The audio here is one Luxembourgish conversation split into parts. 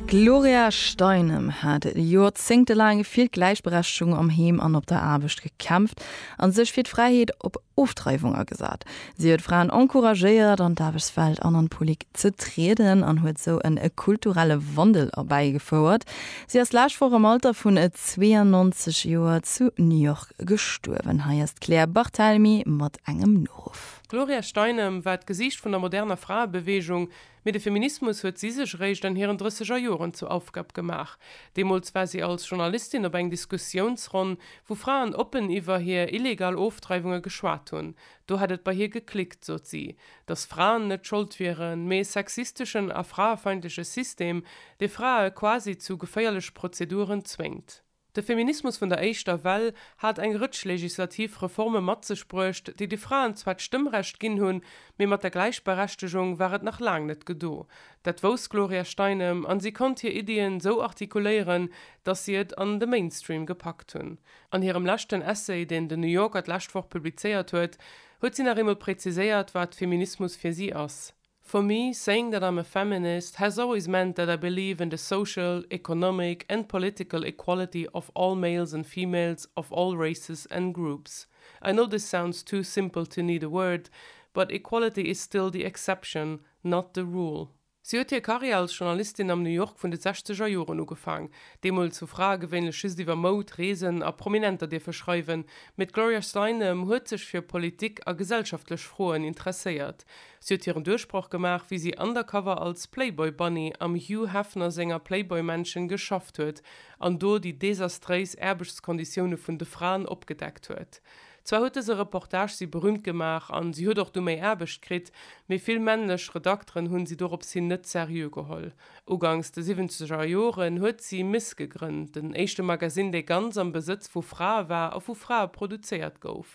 D'Gloria Steinem hat joerzéngtelaang fir d'Gläichberechtegung am Heem an op der Aarbecht gekämpft a sech fir d'Fräiheet op Ofdreiwung agesat. Si huet Fraen encouragéiert, an d'Aarbechtswelt an an d'Polik ze trieden an huet sou e kulturelle Wandel erbäigefouert. Si ass d'lescht Woch am Alter vun 92 Joer zu New York gestuerwen. Hei ass d'Claire Barthelemy mat engem Noruff. D'Gloria Steinem war d'Gesiicht vun der moderner Fraebeweegung, Mee de Feminismus huet si sech eréischt an hiren drësseger Joren zur Aufgab gemaach. Deemools war si als Journalistin op eng Diskussiounsronn, wou Fraen oppen iwwer hir illegal Ofdreiwunge geschwat hunn. Do hätt et bei hir geklickt, sot si, datt Fraen net Schold wieren, mee e sexisteschen a fraefeindleche System, dee Frae quasi zu geféierlech Prozeduren zwéngt. De Feminismus vun der éischter Well hat eng Rëtsch legislativ Reforme mat sech bruecht, déi de Fraen zwar d'Stëmmrecht ginn hunn, mee mat der Gläichberechtegung war et nach laang net gedo. Dat wouss d'Gloria Steinem an si konnt hir Iddien sou artikuléieren, datt si et an de Mainstream gepackt hunn. An hirem leschten Essay, deen den New Yorker d'lescht Woch publizéiert huet, huet si nach eemol präziséiert, wat Feminismus fir si ass. For me, saying that I'm a feminist has always meant that I believe in the social, economic and political equality of all males and females of all races and groups. I know this sounds too simple to need a word, but equality is still the exception, not the rule. Si huet hir Karriär als Journalistin am New York vun de sechzeger Joren ugefaang. Deemools hu Frae gewéinlech just iwwer Moud, Reesen a Prominenter dierfe schreiwen, mee d'Gloria Steinem huet sech fir Politik a gesellschaftlech Froen interesséiert. Si huet hiren Duerchbroch gemaach, wéi si undercover als Playboy Bunny am Hugh Hefner senger Playboy Mansion geschafft huet an do déi desastréis Aarbechtskonditioune vun de Fraen opgedeckt huet. Zwar huet dëse Reportage si berüümt gemaach an si huet och du méi Aarbecht kritt, mee vill männlech Redakteren hunn si dorops hin net seriö geholl. Ugangs de siwwenzeger Joren huet si Miss gegrënnt, den éischte Magazine, dee ganz am Besëtz vu Frae war a vu Frae produzéiert gouf.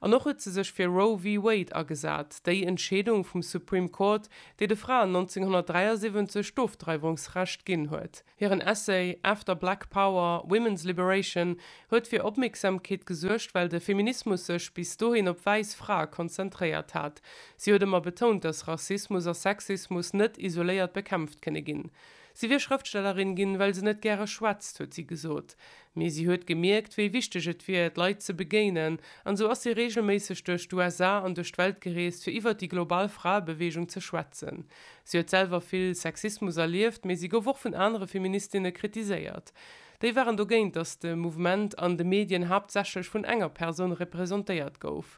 An och huet se sech fir Roe v. Wade agesat, déi Entscheedung vum Supreme Court, déi de Fraen 1973 d'Ofdreiwungsrecht ginn huet. Hiren Essay After Black Power, Women's Liberation huet fir Opmierksamkeet gesuergt, well de Feminismus sech bis dohin op wäiss Frae konzentréiert hat. Si huet ëmmer betount, datt Rassismus a Sexismus net isoléiert bekämpft kënne ginn. Si wier Schrëftstellerin ginn, well se net gäre schwätzt, huet si gesot. Mee si huet gemierkt, wéi wichteg et wier, d'Leit ze begéinen. An esou ass si reegelméisseg duerch d'USA an duerch d'Welt gereest, fir iwwert déi global Fraebeweegung ze schwätzen. Si huet selwer vill Sexismus erlieft, mee si gouf och vun anere Feministinne kritiséiert. Déi waren dogéint, datt de Mouvement an de Medien haaptsächlech vun enger Persoun representéiert gouf.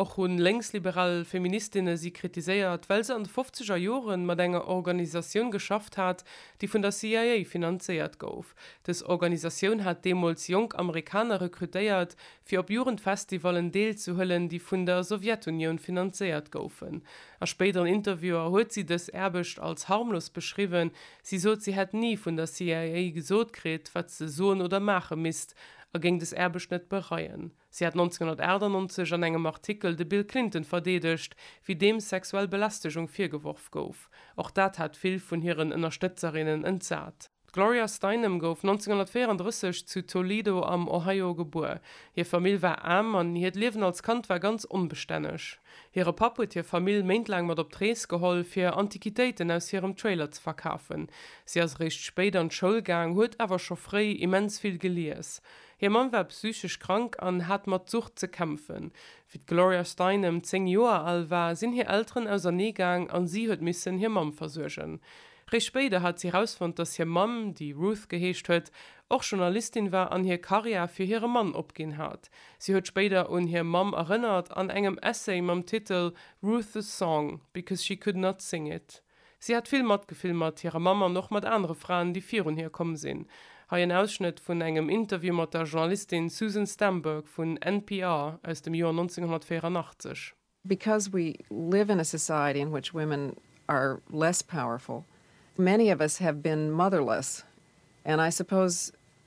Och hu lénksliberal Feministinne si kritiséiert, well se an de fofzeger Jore mat enger Organisatioun geschafft hat, déi vun der CIA finanzéiert gouf. Dës Organisatioun hat deemools jonk Amerikaner rekrutéiert, fir op Jugendfestivallen deelzehuelen, déi vun der Sowjetunioun finanzéiert goufen. A spéideren Interviewer huet si dës Aarbecht als harmlos beschriwwen. Si sot, si hätt ni vun der CIA gesot kritt, wat se soen oder maache misst, a géing des Aarbecht net bereien. Si hat 1998 an engem Artikel de Bill Clinton verdeedegt, wéi deem sexuell Belästegung virgeworf gouf. Och dat hat vill vun hiren Ënnerstëtzerinnen entsat. D'Gloria Steinem gouf 1934 zu Toledo am Ohio gebuer. Hir Famill war aarm an hiert Liewen als Kand war ganz onbestänneg. Hire Papp huet hir Famill méintlaang mat op d'Rees geholl, fir Antiquitéiten aus hirem Trailer ze verkafen. Si ass eréischt spéit an d'Schoul gaang, huet awer scho fréi immens vill gelies. Hir Mamm war psychesch krank an hat mat Sucht ze kämpfen. Wéi d'Gloria Steinem zéng Joer al war, sinn hir Elteren ausernee gaang a si huet missen hir Mamm versuergen. Réischt spéider hat si erausfonnt, dass hir Mamm, déi Ruth geheescht huet, och Journalistin war an hir Karriär fir hire Mann opginn hat. Si huet spéider un hir Mamm erënnert an engem Essay mam Titel Ruth the song, because she could not sing it. Si hat vill Matgefill mat hirer Mamm an och mat anere Fraen, déi virun hir komm sinn. Hei en Ausschnëtt vun engem Interview mat der Journalistin Susan Stamberg vun NPR aus dem Joer 1984. Because we live in a society in which women are less powerful, many of us have been motherless and I suppose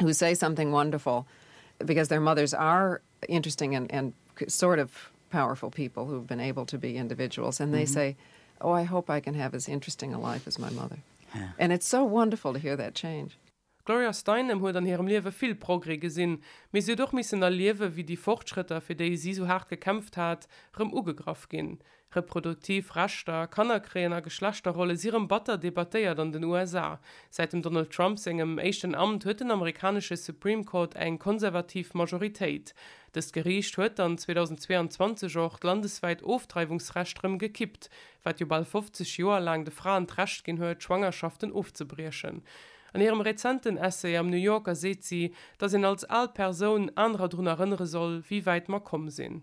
who say something wonderful because their mothers are interesting and and sort of powerful people who have been able to be individuals and they mm -hmm. say oh I hope I can have as interesting a life as my mother yeah. and it's so wonderful to hear that change. D'Gloria Steinem huet an hirem Liewe vill Progrès gesinn, mee si huet och missen erliewen, wéi déi Fortschrëtter, fir déi si sou haart gekämpft hat, rëm ugegraff ginn. Reproduktiv Rechter, Kannerkréien a Geschlechterrolle si rëm batter debattéiert an den USA. Säit dem Donald Trump sengem éischten Amt huet den amerikanesche Supreme Court eng konservativ Majoritéit. Dëst Geriicht huet dann 2022 och d'landeswäit Ofdreiwungsrecht rëm gekippt, wat jo bal 50 Joer laang de Fraen d'Recht ginn huet, Schwangerschaften ofzebriechen. An hirem rezenten Essay am New Yorker seet si, datt een als al Persoun anerer drun erënnere soll, wéi wäit mer komm sinn.